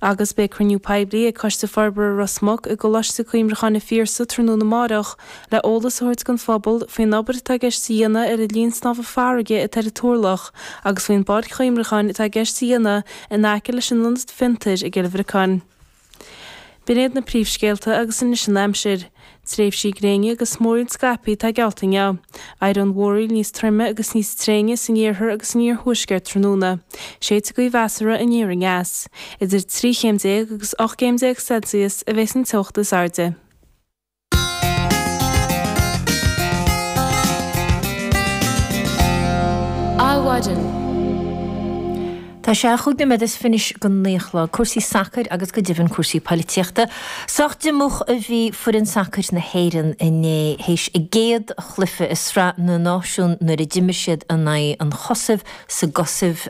Agus beidh cruinniú poiblí ag Coiste Forbartha Ros Muc i gColáiste Cuimhneacháin an Phiarsaigh tráthnóna amárach le eolas a thabhairt don phobal faoin obair atá i gceist a dhéanamh ar an linn snámha farraige atá ar an Turlach agus faoin bpáirc chuimhneacháin atá i gceist a dhéanamh in aice leis an ionad fiontair i gCill Bhriocáin. B'in iad na príomhscéalta agus anois an aimsir. Tréimhsí gréine agus múiríní scaipthe atá geallta inniu. Éireoidh an mhúraíl níos troime agus níos tréine san iarthar agus san iarthuaisceart tráthnóna. Séidfidh gaoth mheasartha aniar aneas. Idir 13 chéim agus 18 gcéim Celsius a bheidh an teocht is airde. Adhmhaidin. Tá sé chúig nóiméad is fiche anois don naoi a chlog. Cúrsaí sacair agus go deimhin cúrsaí poilitíochta. Sách diomúch a bhí foireann sacair na hÉireann inné théis a gcéad chluiche i Sraith na Náisiún nuair a d'imir siad in aghaidh an Chosaiv sa gCosaiv.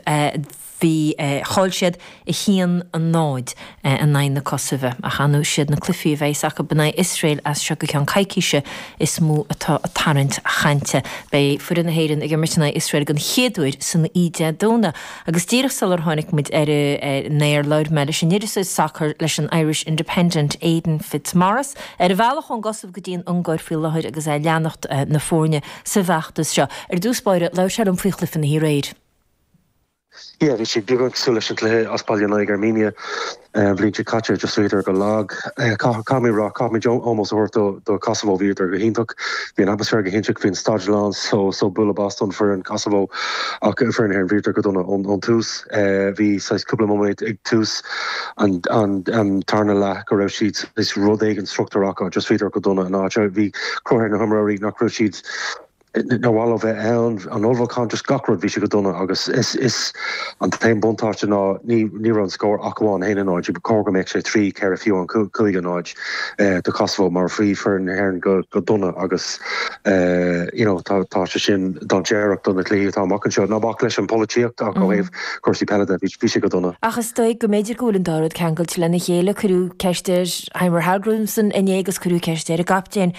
Bhí, chaill siad 1, 0, in aghaidh na Cosaive ach anois siad na cluichí a bheas acu in aghaidh Iosrael as seo go ceann coicíse is mó atá tarraingt chainte. Beidh foireann na hÉireann ag imirt in aghaidh Iosrael den chéad uair san oíche Dé Domhnaigh agus díreach sular tháinig muid ar an aer labhair mé leis an iriseoir sacair leis an Irish Independent, Aidan Fitzmaurice, ar a bhealach ón gCosaiv go dtí an Ungáir faoi láthair agus é ag leanacht na foirne sa bhfeachtas seo. Ar dtús báire, labhair sé liom faoi chluiche na hoíche aréir. Bhí sé beagán cosúil leis an gcluiche as baile in aghaidh Armenia an bhliain seo caite, just bhíodar go lag. Caithfidh mé a rá, caithfimid ómós a thabhairt do Kosovo, bhíodar go hiontach, bhí an atmaisféar go hiontach, bhí an staid lán só. Bualadh bos don foireann Kosovo ach an foireann na hÉireann, bhíodar go dona ón tús. Bhí saghas cúpla nóiméad ag tús an tarna leath go raibh siad saghas rud éigin struchtúrach acu, just bhíodar go dona in áiteanna. Bhí cruth ar na himreoirí nach raibh siad. nár mhaith leo bheith ann? An ullmhúchán, just gach rud, bhí sé go dona agus is an t-aon buntáiste ná ní raibh an scór ach amháin 1-0. Ba chóir go mbeadh sé 3, 4 fiú an 5-0 do Kosovo mar bhí foireann na hÉireann go dona agus you know tá sé sin dainséarach do na cluichí atá amach anseo. Ná bac leis an pholaitíocht ach ó thaobh cúrsaí peile de, bhí sé go dona. Ach is dóigh go mb'fhéidir go bhfuil an dá rud ceangailte lena chéile. Cuireadh ceist ar Heimir Hallgrímsson inné agus cuireadh ceist ar an gcaptaen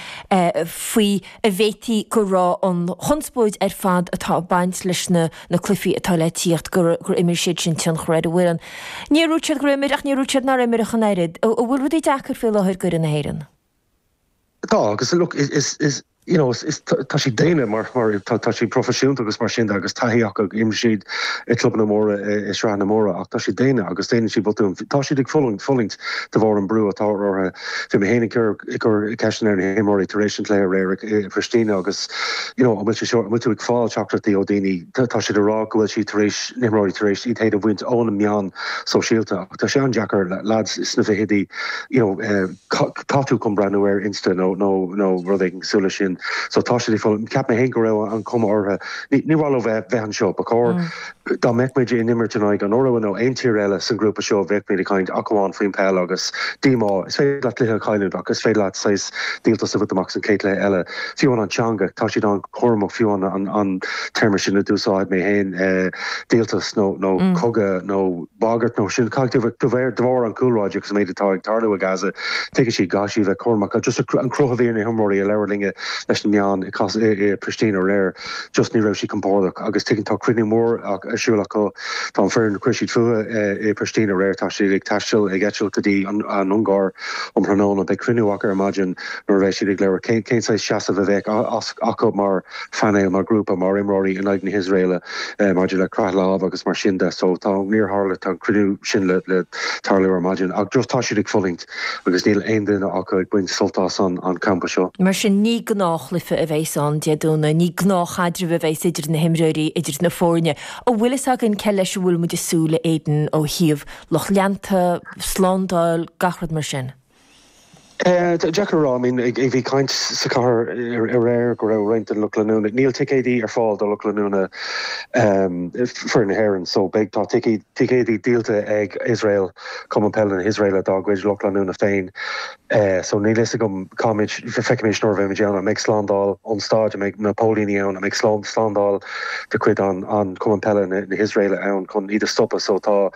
faoi. an bhféadfadh go raibh an chonspóid ar fad atá ag baint leis na na cluifí atá le tíocht, gur gur imir siad sin tionchar ar an bhfoireann. Níor úirt siad gur imir ach níor úirt siad nár imir ach an oiread. An bhfuil rudaí deacair faoi láthair d'fhoireann na hÉireann? Tá agus look is is is you know is is tá siad daonna mar mar tá tá siad proifisiúnta agus mar sin de agus taithí acu ag imir siad ag clubanna móra i i sraitheanna móra ach tá siad daonna agus déanann siad botúin. Tá siad ag fulaingt fulaingt de bharr an brú atá orthu. Bhí mé féin ag cur ceisteanna ar na himreoirí tar éis an chluiche aréir i bPristina agus you know an bhfuil sé seo, an bhfuil tú ag fáil teachtaireachtaí ó daoine? Tá siad ag rá go bhfuil siad tar éis, na himreoirí tar éis iad féin a bhaint ó na meáin sóisialta ach tá sé an-deacair leaids sna fichidí you know eh tá tú chun breathnú ar Insta nó nó nó rud éigin cosúil leis sin so tá siad ag fulaingt. Cheap mé féin go raibh an chuma orthu, níor mhaith leo bheith bheith anseo, ba chóir. Dá mbeadh muid ag imirt in aghaidh an Iorua nó aon tír eile san grúpa seo bheadh muid ag caint ach amháin faoin peil agus díomá. Is féidir leat cluiche a chailliúint ach is féidir leat saghas díoltas a bhaint amach san chéad cluiche eile. Fiú an an teanga, tá siad an-chúramach fiú an an téarma sin a d'úsáid mé féin díoltas nó nó cogadh nó bagairt nó sin cad de bharr de bharr an cúlráid agus an méid atá ag tarlú i Gaza tuigeann siad go gcaithfidh siad bheith cúramach ach just an cruth a bhí ar na himreoirí a labhair linn leis na meáin i Pristina aréir. just ní raibh sí compordach agus tuigeann tá cruinniú mór ar siúl acu tá an foireann chuir siad fúthu i Pristina aréir tá siad ag taisteal ag eitilt go dtí an Ungáir um thráthnóna beidh cruinniú acu ar maidin nuair a bheidh siad ag labhairt cén cén saghas seasamh a bheas acu mar phainéal mar ghrúpa mar imreoirí in aghaidh na hIosraeile maidir le croitheadh lámh agus mar sin de so tá níor tharla tá an cruinniú sin le le tarlú ar maidin ach just tá siad ag fulaingt agus níl aon duine acu ag baint sult as an campa seo. Mar sin, ní gnáthchluiche a bheas ann, Dé Domhnaigh. Ní gnáthchaidreamh a bheas idir na himreoirí, idir na foirne. An bhfuil fhios againn cé leis a bhfuil muid ag súil, a Aidan, ó thaobh lucht leanta, slándáil, gach rud mar sin? Deacair a rá. Bhí caint sa chathair aréir go raibh roinnt den lucht leanúna, níl ticéidí ar fáil do lucht leanúna foireann na hÉireann, so beidh, tá ticéid, Ticéid díolta ag Iosrael, Cumann Peile na hIosraeile, dá gcuid lucht leanúna féin. So níl fhios agam cá mbeimid, feicfimid nuair a bheimid ann. An mbeidh slándáil ón stáid? An mbeidh na póilíní ann? An mbeidh slándáil de chuid an Chumann Peile na hIosraeile ann chun iad a stopadh? So tá,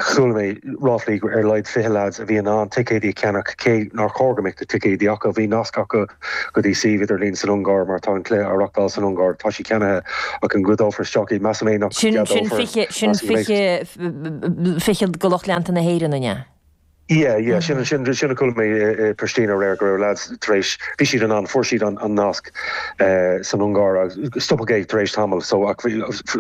chuala mé ráflaí go ar a laghad fiche leaids a bhí in ann ticéid a cheannach, cé nár chóir go mbeadh na ticéid acu. Bhí nasc acu. go dtí suíomh idirlín san Ungáir mar tá an cluiche á reachtáil san Ungáir. Tá siad ceannaithe ach an gceadófar isteach iad? Measaim féin nach Sin sin gceadófar. fiche sin Measaim go mbeidh. fiche fiche de lucht leanta na hÉireann an ea? Yeah yeah sin an sin sin a chuala mé i i Pristina aréir go raibh lads tar éis bhí siad in ann fuair siad an an nasc san Ungáir agus stopadh é tar éis tamall so ach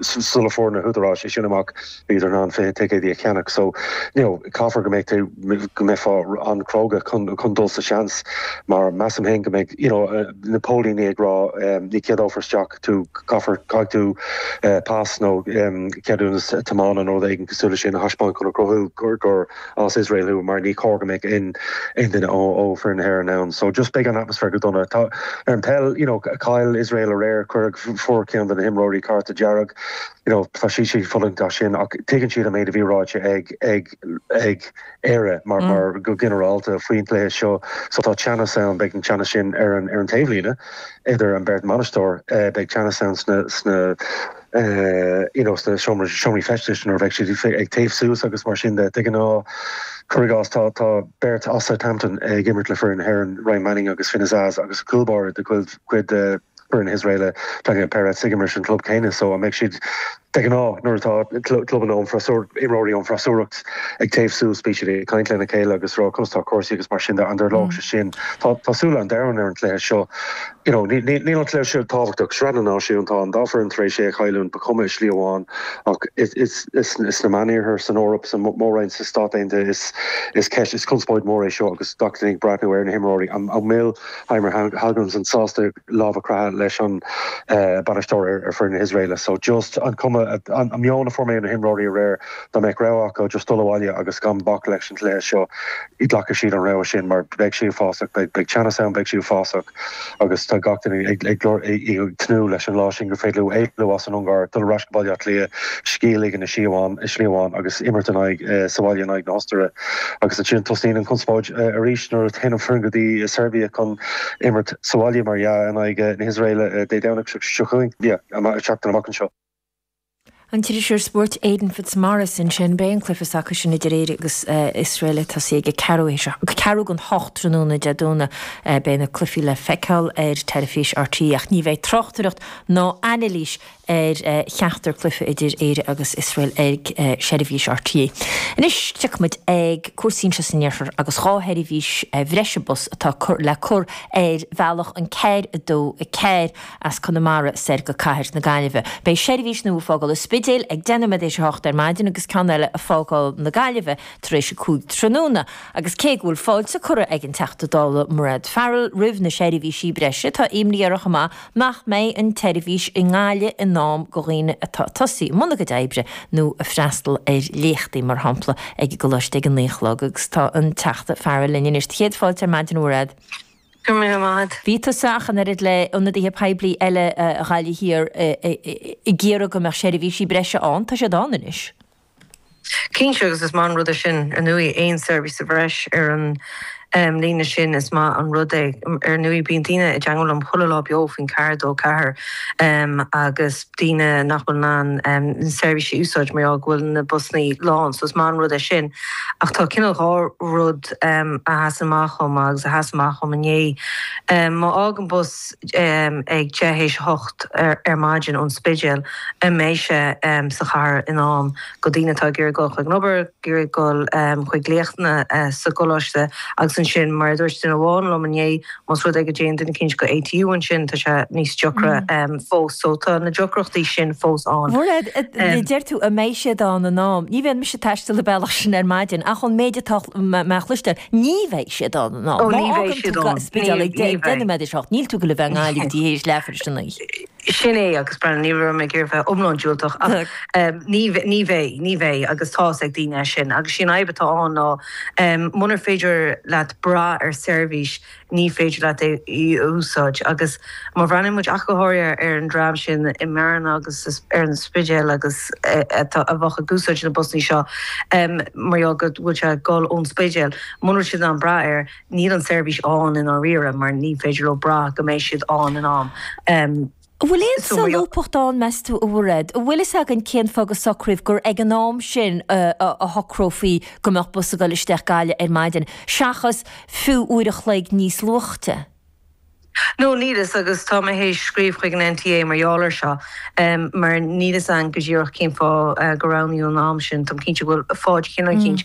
sula fuair na húdaráis é sin amach bíodar in ann 20 ticéad a cheannach so you know caithfear go mbeidh tú go mbeifeá an-chróga chun chun dul sa seans mar measaim féin go mbeidh you know na póilíní ag rá em ní cheadófar isteach tú caithfear caithfidh tú eh pas nó em ceadúnas tiomána nó rud éigin cosúil leis sin a thaispeáint chun a chruthú gur gur as Iosrael thú mar ní cóir go mbeadh aon aon duine ó ó foireann na hÉireann ann so just beidh an atmaisféar go dona agus ar an peil you know chaill Iosrael aréir cuireadh fuair ceann de na himreoirí cárta dearg you know tá siad ag fulaingt as sin ach tuigeann siad an méid a bhí ráite ag ag ag Éire mar mar go ginearálta faoin gcluiche seo so tá teannas ann beidh an teannas sin ar an ar an taobhlíne idir an beirt mbainisteoir eh, beidh teannas ann sna sna eh, you know sna seomra seomraí feistis nó beidh siad fé- ag téamh suas agus mar sin de tuigeann tú cuir i gcás tá tá beirt as Southampton ag imirt le foireann na hÉireann Ryan Manning agus Finn Azaz agus cúlbáire de chuid chuid eh, foireann na hIosraeile Daniel Peretz ag imirt sa club céanna so an mbeidh siad De ghnáth nuair atá clubanna ón freasúr imreoirí ón freasúracht ag téamh suas bíonn siad ag caint lena chéile agus ag rá conas tá cúrsaí agus mar sin de an dtarlóidh sé sin tá tá súile an domhain ar an cluiche seo you know ní ní níl an cluiche seo tábhachtach sraith na náisiún tá an dá foireann tar éis cailliúint ba chuma i slí amháin ach is is is is na meán iarthar san Eoraip san mór-roinn sa Stát Aontaithe is is ceist is conspóid mór é seo agus gach duine ag breathnú ar na himreoirí an an mbeidh Heimir Hallgrímsson sásta lámh a chroitheadh leis an bainisteoir ar foireann na hIosraeile so just an cuma, an meon a fuair mé ó na himreoirí aréir dá mbeadh rogha acu just dul abhaile agus gan bac leis an gcluiche seo ghlacfadh siad an rogha sin mar beidh sé uafásach, beidh teannas ann, beidh sé uafásach agus tá gach duine ag tnúth leis an lá sin gur féidir leo éalú as an Ungáir, dul ar ais go Baile Átha Cliath, scíth a ligean i slí amháin agus imirt in aghaidh, sa bhaile in aghaidh na hOstaire. Agus ansin tosnaíonn an conspóid arís nuair a théann an foireann go dtí Seirbia chun imirt sa bhaile, mar dhea, in aghaidh na hIosraeile Dé Domhnaigh seo chugainn, an tseachtain amach anseo. An t-iriseoir spóirt Aidan Fitzmaurice ansin, beidh an cluiche s'acu sin idir Éire agus Iosrael ag tosú ag a ceathrú théis a ceathrú go n-a hocht tráthnóna Dé Domhnaigh. Beidh na cluichí le feiceáil ar teilifís RTÉ ach ní bheidh tráchtaireacht ná anailís ar cheachtar cluiche idir Éire agus Iosrael ag seirbhís RTÉ. Anois tiocfaidh muid chuig cúrsaí anseo san iarthar agus dhá sheirbhís bhreise bus atá le cur ar bhealach an 424 as Conamara soir go cathair na Gaillimhe. Beidh seirbhís nua ag fágáil an Spidéil ag deich nóiméad tar éis a hocht ar maidin agus ceann eile ag fágáil na Gaillimhe tar éis a cúig tráthnóna agus cé go bhfuil fáilte curtha ag an Teachta Dála Mairéad Farrell roimh na seirbhísí breise tá imní uirthi chomh maith nach mbeidh an tseirbhís i nGaillimh in am go dhaoine atá ag tosú i mbun a gcuid oibre nó ag freastal ar léachtaí, mar shampla, ag an gcoláiste ag a naoi a chlog. Agus tá an Teachta Farrell linn anois. Tá céad fáilte ar maidin, a Mhairéad. Go raibh maith 'ad. Bhí tusa ach an oiread le ionadaithe poiblí eile Ghaillimh Thiar ag iarraidh go mbeadh seirbhísí breise ann. Tá siad ann anois. Cinnte, agus is maith an rud é sin. Ar ndóigh, aon seirbhís sa bhreis ar an líne sin, is maith an rud é. Ar ndóigh, bíonn daoine i dteagmháil liom chuile lá beo faoin ceathair, dó ceathair, agus daoine nach bhfuil in ann na seirbhísí a úsáid mar gheall go bhfuil na busannaí lán. So is maith an rud é sin. Ach tá cineál dhá rud a sheasann amach dhom, agus a sheas amach dhom inné. Má fhágann bus. ag deich théis a hocht ar maidin ón Spidéal an mbeidh sé sa chathair in am do dhaoine atá ag iarraidh dul chuig an obair, ag iarraidh dul chuig léachtanna sa gcoláiste agus ansin mar a dúirt duine amháin liom inné más rud é go dtéann duine éicint go ATU ansin tá sé níos deocra fós so tá na deacrachtaí sin fós ann. Deir tú an mbeidh siad ann in am. Ní bheidh mise ag taisteal ar an mbealach sin ar maidin ach ón méid atá mé a chloisteáil, Ní bheidh siad ann ná má fhágann tú an Spidéal ag deich nóiméad théis a hocht, níl tú ag dul a bheith i nGaillimh go dtí tar éis leathuair théis a naoi. Sin é agus, b'fhéidir, ní raibh mé ag iarraidh bheith iomlán diúltach ach ní bheidh, ní bheidh agus tá's ag daoine é sin agus sí an fhadhb atá ann ná munar féidir leat brath ar seirbhís ní féidir leat é a úsáid. Agus má bhreathnaíonn muid ach go háirithe ar an dream sin i mBearna agus ar an Spidéal agus a bheadh ag úsáid na busanna seo mar gheall go bhfuil sé ag dul ón Spidéal, muna bhfuil siad in ann brath air, níl an tseirbhís ann i ndáiríre mar ní féidir leo brath go mbeidh siad ann in am. An bhfuil aon solúbthacht ann, meas tú, a Mhairéad? An bhfuil fhios againn cén fáth gur socraíodh gur ag an am sin a shocrófaí go mbeadh bus ag dul isteach Gaillimh ar maidin, seachas fiú uair a chloig níos luaithe? No, níl fhios agus tá mé théis scríobh chuig an NTA mar gheall ar seo mar níl fhios againn go díreach cén fáth gur roghnaíodh an am sin. Táim cinnte go bhfuil fáth eicínt, cinnte